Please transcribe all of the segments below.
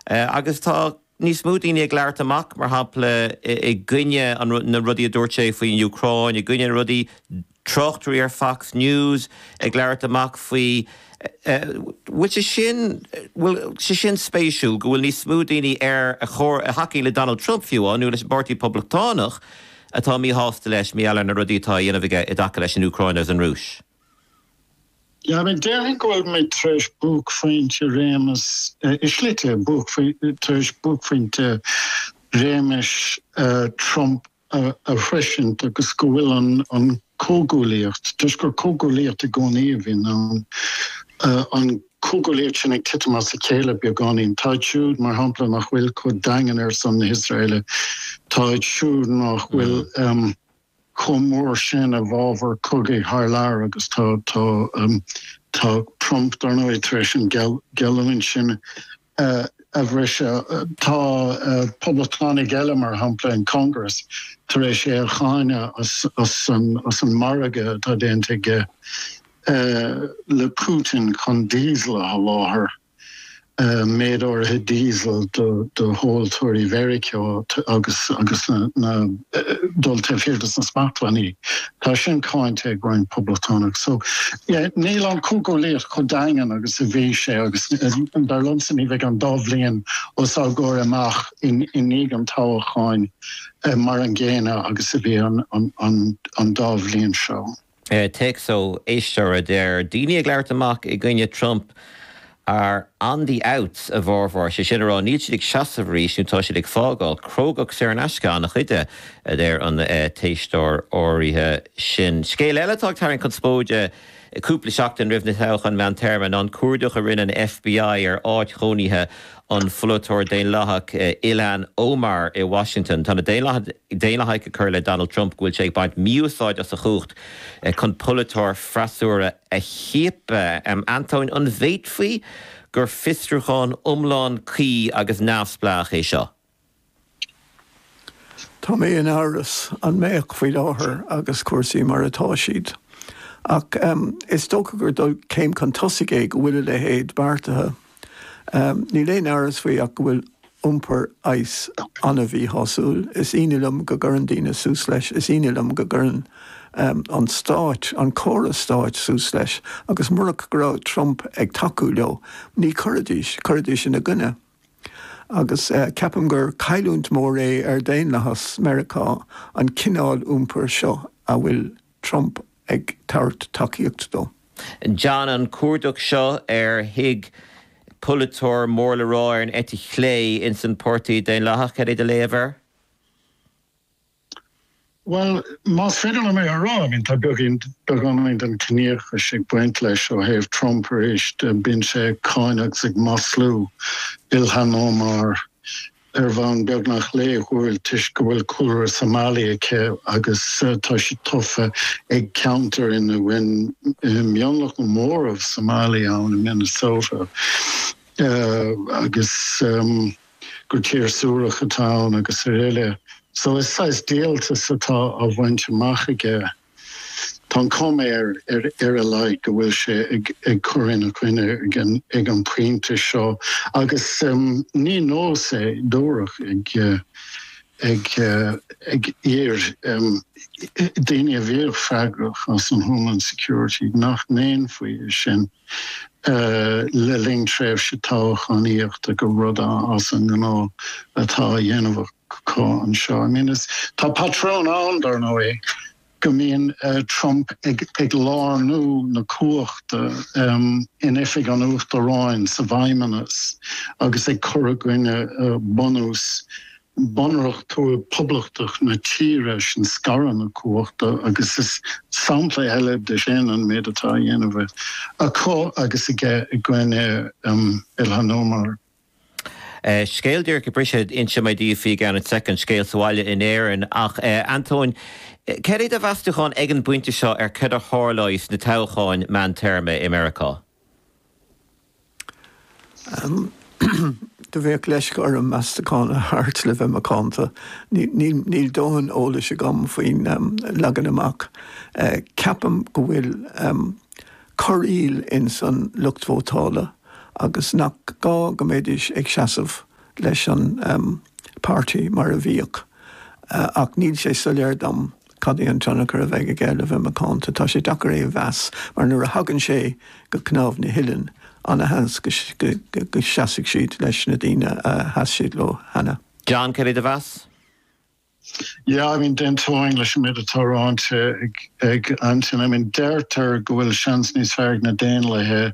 Agus tá níos mó daoine ag labhairt amach, mar shampla, i gcoinne na rudaí a dúirt sé faoin Úcráin, i gcoinne na rudaí, tráchtairí ar Fox News ag labhairt amach faoi. Bhuel, sé sin, bhuel, sé sin spéisiúil, go bhfuil níos mó daoine ar a chomhair, a thacaíonn le Donald Trump fiú, á, nó leis an bPáirtí Poblachtánach, atá míshásta leis mar gheall ar na rudaí atá a dhéanamh aige i dtaca leis an Úcráin agus an Rúis. Déarfainn go bhfuil muid tar éis buaicphointe i réimeas i slite, tar éis buaicphointe réimeas Trump a shroisint agus go bhfuil an comhghuaillíocht, toisc gur comhghuaillíocht i gcónaí a bhíonn ann, an comhghuaillíocht sin ag titim as a chéile beagáinín. Tá iad siúd, mar shampla, nach bhfuil chomh daingean ar son na hIosraeile, tá iad siúd nach bhfuil. chomh mór sin i bhfabhar cogaidh thar lear agus tá, tá Trump, dar ndóigh, tar éis an gheallúint sin a bhriseadh. Tá Poblachtánaigh eile, mar shampla in Congress, tar éis é a cháineadh as an margadh atá déanta aige le Putin chun Diesel a sholáthar. méid áirithe Diesel do thomhaltóirí Mheiriceá agus dul taobh thiar de na smachtbhannaí. Tá sin cáinte ag roinnt Poblachtánach. So, yeah, níl an chomhghuaillíocht chomh daingean agus a bhí sé agus dar liomsa ní bheidh an dá bhliain os ár gcomhair amach i ndiaidh an toghacháin mar an gcéanna agus a bhí an dá bhliain seo. Téacs ó éisteoir a deir, Daoine ag labhairt amach i gcoinne Trump are on the outs a bhformhór, sé sin a rá níl siad ag seasamh arís nó tá siad ag fágáil. Crógacht saor in aisce an-chuid de, a deir an t-éisteoir áirithe sin. Scéal eile atá ag tarraingt conspóide, Cúpla seachtain roimh na toghcháin mheántéarma, ná an cuardach a rinne an FBI ar áit chónaithe an pholaiteoir Daonlathach Ilhan Omar i Washington. Tá na Daonlathaigh ag cur i leith Donald Trump go bhfuil sé ag baint mí-úsáid as a chumhacht chun polaiteoirí freasúra a chiapadh. Antóin, an bhféadfaí gur fiosrúchán iomlán cuí agus neamhspleách é seo? Tá mé in amhras an mbeadh faoi láthair agus cúrsaí mar atá siad. Ach is dócha gur dul céim chun tosaigh é go bhfuil a leithéid beartaithe. Níl aon amhras faoi ach go bhfuil iompar ICE an-mhíshásúil. Is ionadh liom go gcuireann daoine suas leis. Is ionadh liom go gcuireann an stáit, an córas stáit suas leis. Agus murach go raibh Trump ag tacú leo, ní chuirfidís. Chuirfidís ina gcoinne. Agus ceapaim gur cailliúint mór é ar dhaonlathas Meiriceá an cineál iompair seo a bhfuil Trump ag tabhairt tacaíocht dó. John, an cuardach seo ar thigh polaiteoir mór le rá ar an eite chlé ins an Páirtí Daonlathach, céard é do léamh air? Bhuel, más féidir liom é a rá, I mean, tá beagán, beagáinín den chiníochas ag baint leis ó thaobh Trump arís. Bíonn sé ag cáineadh agus ag maslú Ilhan Omar ar bhonn beagnach laethúil toisc go bhfuil cúlra Somali aici agus tá sí tofa ag ceantar ina bhfuil mionlach nó móramh Somali ann i Minnesota agus gur tír suarach atá ann agus aroile. So is saghas díoltas atá á bhaint amach aige. Tá an chuma air, ar a laghad, go bhfuil sé ag cur ina coinne ag an bpointe seo. Agus ní nós é dúradh ag iar-daoine a bhíodh freagrach as an Homeland Security nach ndéanfaí é sin. le linn tréimhse toghchánaíochta gur rud as an ngnáth atá á dhéanamh acu anseo. I mean, is, tá patrún ann, dar ndóigh, go mbíonn Trump ag lárnú na cumhachta in oifig an Uachtaráin sa bhFeidhmeannas agus ag cur i gcoinne bunús bunreacht poblachtach na tíre sin scaradh na cumhachta agus is sampla eile de sin an méid atá á dhéanamh acu agus aige i gcoinne Ilhan Omar. Scéal díreach ag briseadh, inseoidh mé daoibh faoi i gceann soicind, scéal sa bhaile in Éirinn. Ach, a Antóin, céard é do mheastúchán ag an bpointe seo ar céard a tharlóidh sna toghcháin meántéarma i Meiriceá? Bheadh leisce orm meastachán a thabhairt, le bheith macánta? Níl dóthain eolais agam faoin leagan amach. Ceapaim go bhfuil corraíl ins an lucht vótála agus nach gá go mbeidís ag seasamh leis an páirtí mar a bhíodh, ach níl sé soiléir dom. Cad é an tionchar a bheidh aige le bheith macánta? Tá sé deacair é a mheas mar nuair a thagann sé go cnámh na huilleann, ana-sheans go seasfaidh siad leis na daoine a sheas siad leo cheana. John, céard é do mheas? Yeah, I mean, d'aontóinn leis an méid atá ráite ag Antóin. I mean, deirtear go bhfuil seans níos fearr ag na Daonlathaithe.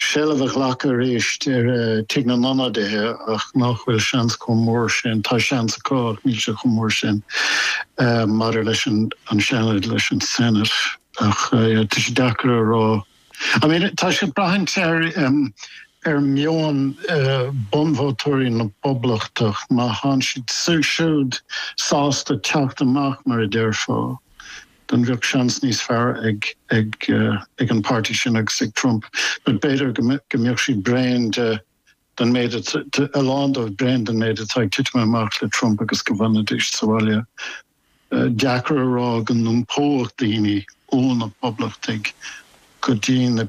seilbh a ghlacadh arís ar Tigh na nIonadaithe ach nach bhfuil seans chomh mór sin, tá seans acu ach níl sé chomh mór sin maidir leis an Seanad, leis an Senate ach tá sé deacair a rá. I mean tá siad ag braithint ar mheon bunvótóirí na bPoblachtach má tá siad siúd sásta teacht amach mar a déarfá then bheadh seans níos fearr ag, ag, ag an páirtí sin agus ag Trump, but b'fhéidir go mbeadh siad bréan de, den méid a, a lán dóibh bréan den méid atá ag titim amach le Trump agus go bhfanfaidís sa bhaile. Deacair a rá go n-iompóidh daoine ó na Poblachtaigh go dtí na.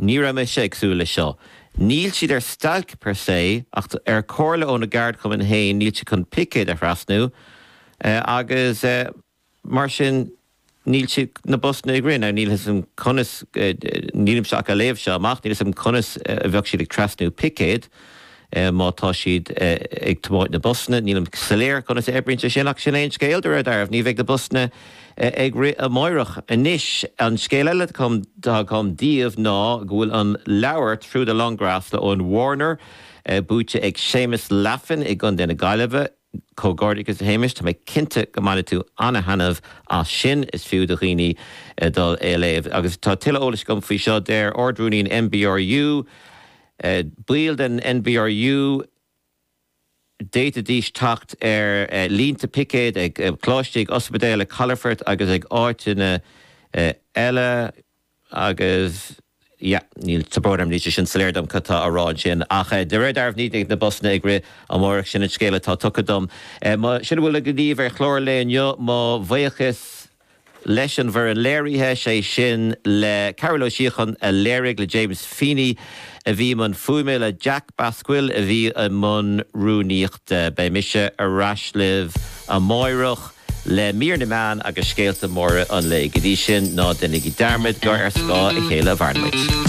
Ní raibh mise ag súil leis seo. Níl siad ar stailc per se, ach ar chomhairle óna gceardchumann féin níl siad chun picéad a thrasnú agus mar sin níl siad na busanna ag rith. Níl 'fhios a'm conas, nílimse ach a' léamh seo amach, níl 'fhios a'm conas a bheadh siad ag trasnú picéad. Má tá siad ag tiomáint na busanna, nílim soiléir conas a oibríonn sé sin, ach sin é an scéal, de réir dealraimh. Ní bheidh na busanna ag rith amáireach. Anois, an scéal eile atá agam daoibh ná go bhfuil an leabhar Through the Long Grass le Eoin Warner buaite ag Séamus Laffan i gContae na Gaillimhe, Comhghairdeachas a Shéamais, tá mé cinnte go mbainfidh tú an-thaitneamh as sin. Is fiú do dhaoine dul á léamh. Agus tá tuilleadh eolais agam faoi seo. Deir Ard-Rúnaí an NBRU, Baill den NBRU, d'fhéadfaidís teacht ar línte picéad ag coláistí, ag ospidéil, ag calafoirt agus ag áiteanna eile. Agus, yeah, níl sé go hiomlán soiléir dom cad tá á rá ansin. Ach de réir dealraimh ní bheidh na busanna ag rith amáireach, sin an scéal atá tugtha dom. Bhuel sin a bhfuil againn daoibh ar chlár an lae inniu, mo bhuíochas leis an bhfoireann léirithe, sé sin le Cearbhall Ó Síocháin a léirigh, le James Feeney a bhí i mbun fuaime, le Jack Basquill a bhí i mbun rúnaíochta. Beidh mise ar ais libh amáireach. le mír na meán agus scéalta móra an lae. Go dtí sin, ná deinigí dearmad gur ar scáth a chéile a mhaireann muid.